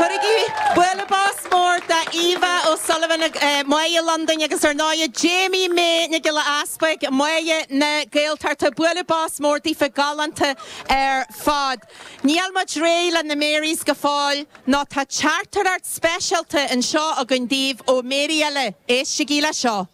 Cuirigí bualadh bos mór d'Eva O'Sullivan, Mary Londain, agus ar ndóigh Jamie Mae Nic Giolla Easpaig, Mary na Gaeltachta. Bualadh bos mór daofa galánta ar fad. Níl muid réidh le na Marys go fóill, nó tá teachtaireacht speisialta anseo againn daoibh ó Mary eile, éistigí le seo.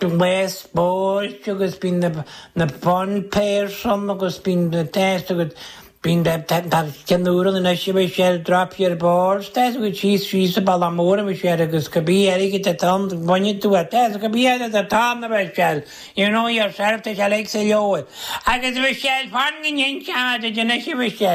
Bíonn mé ag spóirt agus bíonn na fun pairs ann agus bíonn na tests agus bíonn ceiliúradh na nDéise bíonn sé ar drop your balls tests agus síos síos an Balla Mór a bhíonn sé air agus go bí airgead a tonn bhainfidh tú a tests go bí airgead a tonn a bheith sé you know yourself tá sé like sa leabhar agus bhí sé ar fán go ndéanfadh sé an Déise bhí sé